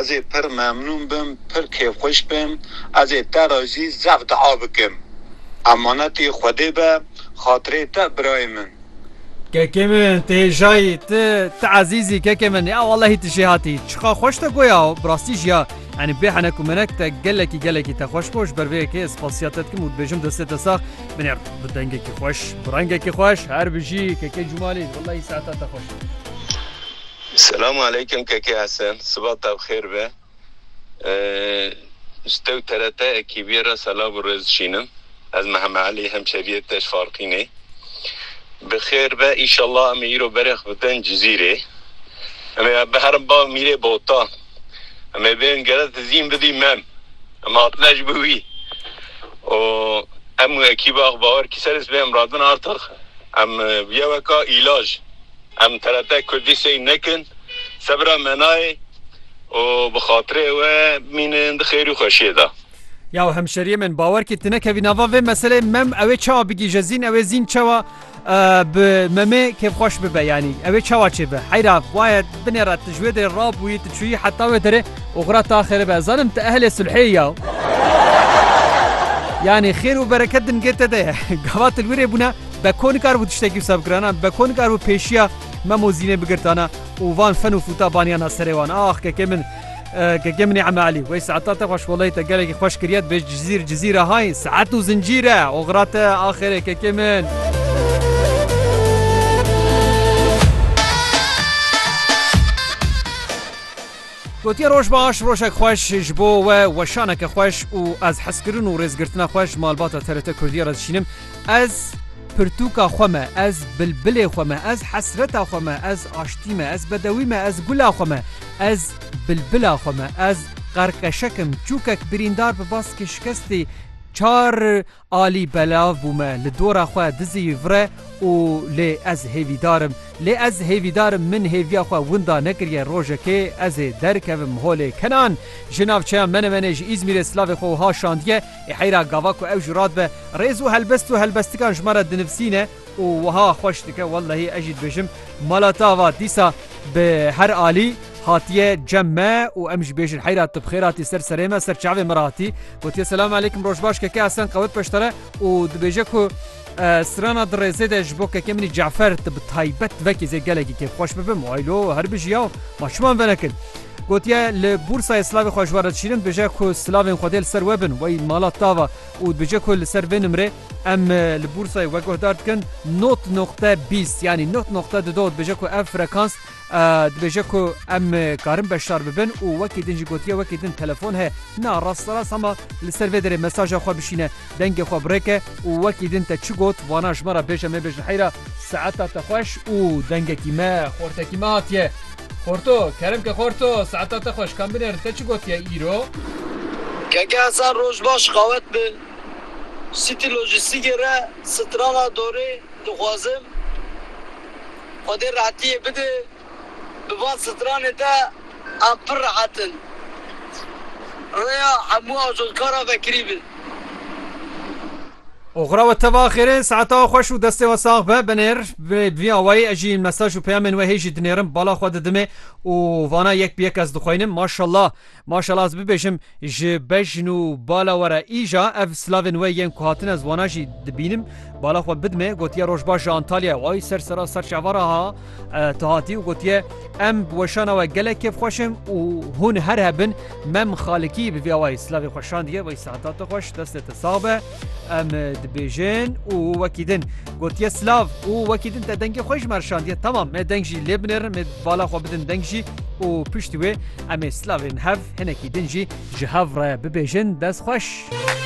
Ez ê pir memnûn bim, pir kêfxweş bim, ez ê te re jî zef dua bikim. Emanetê Xwedê be, xatirê te birayê min. Kekê min, tu hêjayî, tu, tu ezîz î kekê min, ya wellehî tu jê hatî. Çiqas xweş te goya, bi rastî jî ya, yanî bê henek û menek te gelekî gelekî te xweş bo, ji ber vê yekê ez spasîya te dikim û dibêjim destê te sax binê bi dengekî xweş, bi rengekî xweş, her bijî kekê Cûmalî, wellehî saeta te xweş. Selam aleykum Keke Hesen siva te bi xêr be. Ji te û trt ekîbiyê re selav û rêz dişînim. Ez Meheme Elî hemşeriyê te ji Farqînê. Bi xêr be înşallah em ê îro berê xwe bidin Cizîrê. Em ê biherin ba Mîrê Bota. Em ê bên gere dizîn bidî mem. Em hatine ji bo wî. Û em û ekîba xwe bawer kî ser ê sibê em radin artix. Em bûye weka îlaj. Em terete kurdî sey nekin. Sebira me nayê û bi xatirê we bimînin di xêrî û xweşiyê de. Ya hemşeriyê min bawer kî tu nekevî nava vê meseleyê mem ewê çawa bigîje zîn ewê zîn çawa bi memê kêfxweş bibe yanî ewê çawa çêbe heyra waye binêre tu ji wê derê rabûyî tu çûyî heta wê derê û xwira te axêre be ez zanim tu ehlê sulhê ya yanî xêr û bereket di nigê te de ye gava tu li wî rê bûne Beko nikaribû tiştekî wisa bikirana, Beko nikaribû pêşiya Memo Zînê bigirtana û van fen û fûta baniyana serê wan. Ax kekê min, kekê min ê Eme Elî, wey saeta te xwe şkoleyê te gelekî xweş kiriye, dibêj cizîr cizîr e hay, saet û zincîr e, oxira te axêrê kekê min. Gotiye roj baş, rojek xweş ji bo we, weşaneke xweş û ez hezkirin û rêzgirtina xwe ji malbata TRT Kurdiyê re dişînim. Ez pirtûka xwe me, ez bilbilê xwe me, ez hesreta xwe me, ez aştî me, ez bedewî me, ez gula xwe me, ez bilbila xwe me, ez qerqeşek im, çûkek birîndar bi baskê şikestê çar alî belav bû me, li dora xwe dizî vire û lê ez hêvîdar im, lê ez hêvîdar im min hêviya xwe winda nekiriye rojekê ez ê derkevim holê kenan ji navçeya Menemenê ji Îzmîrê silavê xwe wiha şandiye, Ê heyra gava ku ew ji ra dibe rêz û helbest û helbestikan ji me re dinivsîne û wiha xweş dike, Wellehî ez jî dibêjim mala te ava dîsa bi her alî hatiye cem me û em jî bêjin heyra tu bi xêr hatî ser serê me, ser çavê me re hatî. Gotiye selam aleyküm roj baş keke Hesen qewet peştere û dibêje ku Strana di rêzê de ji bo keke min ê Cafer tu bi taybet vekî zê gelekî kêfxweş bibim û eylo her bijî yaw ma çiman venekin. Gotiye li Bûrsayê silavê xwe ji we re dişînim dibêje ku silavên xwe dê li ser we bin wey mala tava û dibêje ku li ser vê nimrê em li Bûrsayê we guhdar dikin not noqte bîst yanî not noqte du do dibêje ku ev frekans Dibêje ku em karin beşdar bibin û wekî din jî gotiye wekî din telefon heye. Na rasterast hema li ser vê derê mesaja xwe bişîne, dengê xwe birêke û wekî din te çi got vana ji me re bêje mêbêj li heyra. Saeta te xweş û dengekî me xortekî me hatiye. Xorto, Kerim ke xorto, saeta te xweş, kam binêrin te çi gotiye îro? Keke Hesen roj baş qawet bi. Sîtî lojîstîkê re strana dorê dixwazim. Xwedê rehetiyê bide bi van stranê de em pir rehet in. Rêya hemû ajotkaran vekirî be. Oxira we teva xêr e, saeta we xweş û destê we sax be. Binêr bi vî awayî ez jî mesaj û peyamên we hê jî dinêrim, bala xwe didimê û vana yek bi yek ez dixweynim. Maşallah. Maşallah ez bibêjim ji bejn û bala we re îja ev silavên we yên ku hatine ziwana jî dibînim bala xwe bidime gotiye rojbaş ji Antalyayê way ser sera ser çava re ha tu hatî û gotiye em bi weşana we gelek kêfxweş in û hûn her hebin mem xalikî bi vî awayî silavê xwe şandiye way seheta te xweş destê te sax be. Em dibêjin û wekî din gotiye silav û wekî din te dengê xwe ji me rişandiye temam me deng jî lê binêrin me bala xwe bidin deng jî û piştî wê em ê silavên hev hinekî din jî ji hev re bibêjin dest xweş.